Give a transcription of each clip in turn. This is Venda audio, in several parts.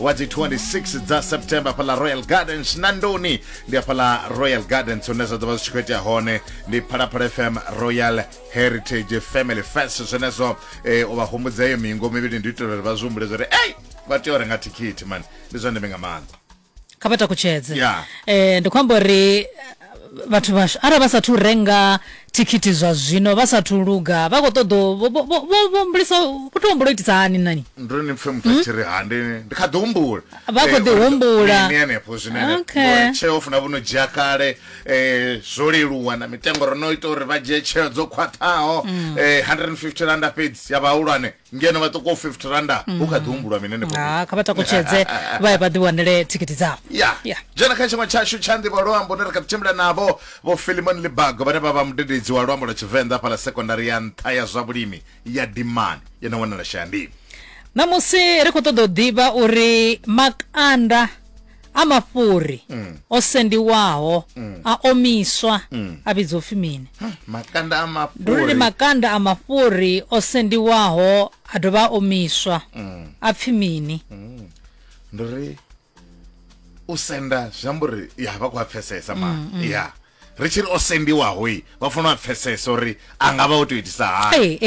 wa dzi 26 dza september fhaḽa royal gardens na ndoni ndi afhaḽa royal gardens hune zwa ḓo vha zwi tshi khou itea hone ndi phalaphala fm royal heritage family fest zwenezwo eh, u vha humbudza iyo mingo mivhili ndi u itela uri vha zwi humbule zwa uri ei vha tea u renga thikhithi mani ndi zwa ndeme nga maanḓa kha vha takutshedze Yeah. eh, ndi khou amba uri eh, vhathu vhashu arali vha sathu renga thikhithi zwa zwino vha sathu luga vha kho ṱoḓo vho humbulisa vho to humbula u itisa hani nani ndo ni pfe muthu a tshi ri ha ndi ndi kha ḓi humbula Vha khou Eh, ḓi uri- humbula. mini henefho zwine Okay. okay. tsheo funa vho no dzhia kale eh, zwo leluwa na mitengo ro no ita uri vha dzhie tsheo dzo khwaṱhaho eh, 150 randa fhedzi ya vhahulwane ngeno vha ṱokoho 50 randa hu kha ḓi humbulwa mini henefho fhethu? ha kha vha takutshedze vha ye vha ḓi wanele thikhithi dzavho ya Yeah. dzhena kha tshiṅwe tshashu tsha nḓivho luambo ne ri kha ḓi tshimbila navho vho filimon libago vhane vha vha mudededzi wa luambo lwa tshivenḓa fhala sekondari ya nṱha ya zwa vhulimi ya dimani ye na wanala shayandini ṋamusi ri khou ṱoḓa u ḓivha uri makanda a mafhuri mm. o sendiwaho mm. a omiswa mm. a vhidzwa upfi mini makanda a mafhuri ndi uri makanda a mafhuri o sendiwaho a dovha a omiswa mm. a pfi mini mm. ndi uri u senda zwi amba uri ya vha khou a pfesesa ma mm, mm. ya ri tshi ri o sendiwaho i vha funa vha pfesese uri a nga vha o tou itisa hani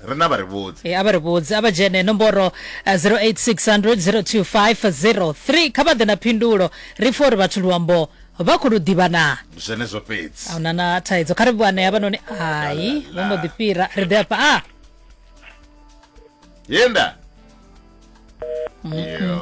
ri na vha ri vhudze ee a vha ri vhudze a vha dzhene nomboro 0860002503 eh, kha vha ḓe na phindulo ri pfha uri vhathu luambo vha khou lu ḓivha na zwenezwo fhedzi a huna na thaidzo kha ri vhuane ya vha noni hai vho mbo ḓi fhira ri ḓe afha a yenda mm -hmm.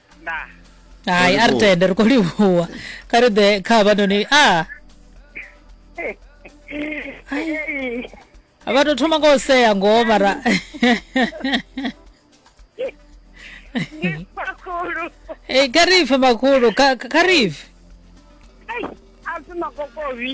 ndaa hayi a ri tende ri khou livhuwa kha ri ḓe kha havhanoni a vha tou thoma nga u sea ngoho mara makhulu Eh, kha ri pfe makhulu kha kha ri pfe a si makokovhi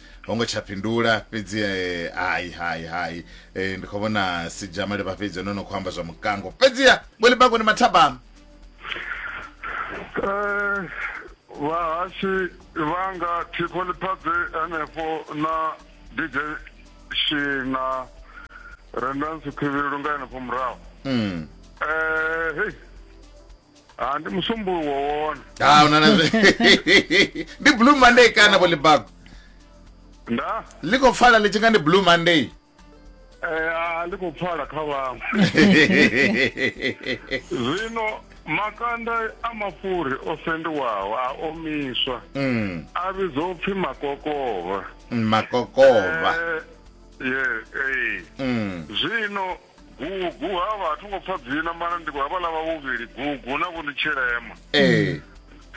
ho ngo tsha fhindula fhedzi eh, hai hai hai eh, ndi khou vhona sijama levha fhedzi ono no khou amba zwa mukango fhedziha weli bako ni mathabama Eh, vhahasi vhanga thikho ḽiphadze henefho na dj shina rendansi khivhilelo nga henefho murahu Mm. Eh, hei Ah, ndi musumbuluwo wone ha una na zwe ndi blue monday kana vho libago nda ḽi khou pfala ḽi tshi nga ndi blue monday eh, ah, ndi khou pfala kha vhaṅwe zwino makanda a mafhuri o sendiwaho a omiswa Mm, a vhidzwa u pfi makokovha mm, makokovha Eh, ye ee Mm, zwino Gugu havha a thi ngo pfa dzina mara ndi havhaḽa vha vhuvhili gugu na vho ndi tshilema ee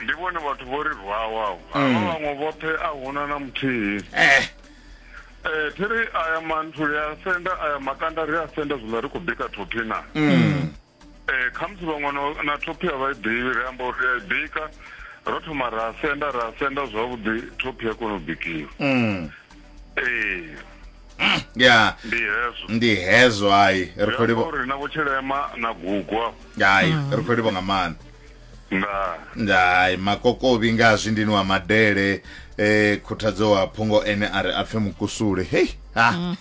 ndi vhone vhathu vho ri rwaho avho havha vhaṅwe vhoṱhe a huna na muthihi eh Eh, thi ri aya manthu ri a senda aya makanda ri a senda zwiḽa ri khou bika thophi na um khamusi vhaṅwe na- na thophi a vha i ḓivhi ri amba uri ri a i bika ro thoma ra senda ra senda zwavhuḓi thophi ya kona u bikiwa um ee Mm, ya ndi hezwo ndi hezwo hayi ri khou Zwi amba livho uri na vhotshilema na gugwa hayi ri khou livho nga maanḓa nda ndai makokovhi nga zwindini wa madele eh khuthadzo wa phungo ene a ri a pfe mukusule hey ha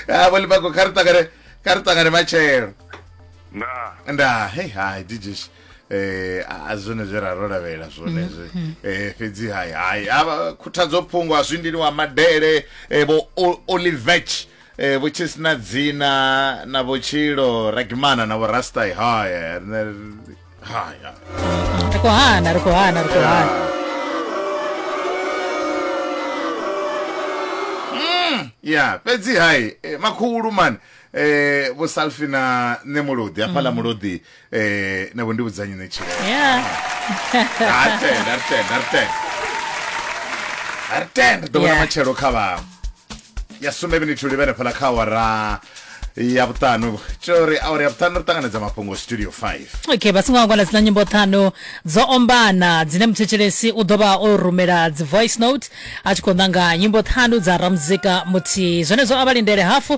ha vholi bako kha ri ṱangane kha ri ṱangane matshelo nda nda hey hai dijish eh a zwone zwe ra ro lavhelela zwone zwe mhm. eh fhedzi hai hai ava khuthadzo phungo a zwindili wa madele eh bo Olivech eh vho tshisina dzina na vhotshilo ragimana na vho rastai hai hai ri khou hana ri khou hana ri khou hana mm, ya fhedzi hai eh, makhulu mani eh vho salfina ne mulodi hafhala mm. mulodi eh nabo ndibuzanye nechile yeah artend artend artend artend ḓo vhona Yeah. matshelo kha vha ya sumbe minithu livhene phala kha awara ya vhuṱanu tshouri awara ya vhuṱanu ri ṱanganedza mafhungo studio 5 okay vha songo angwana dzina nyimbo ṱhanu dzo ombana dzine muthetshelesi u ḓo vha o rumela dzi voice note a tshi khou ṋanga nyimbo ṱhanu dza ramuzika muthihi zwenezwo a vha lindele hafu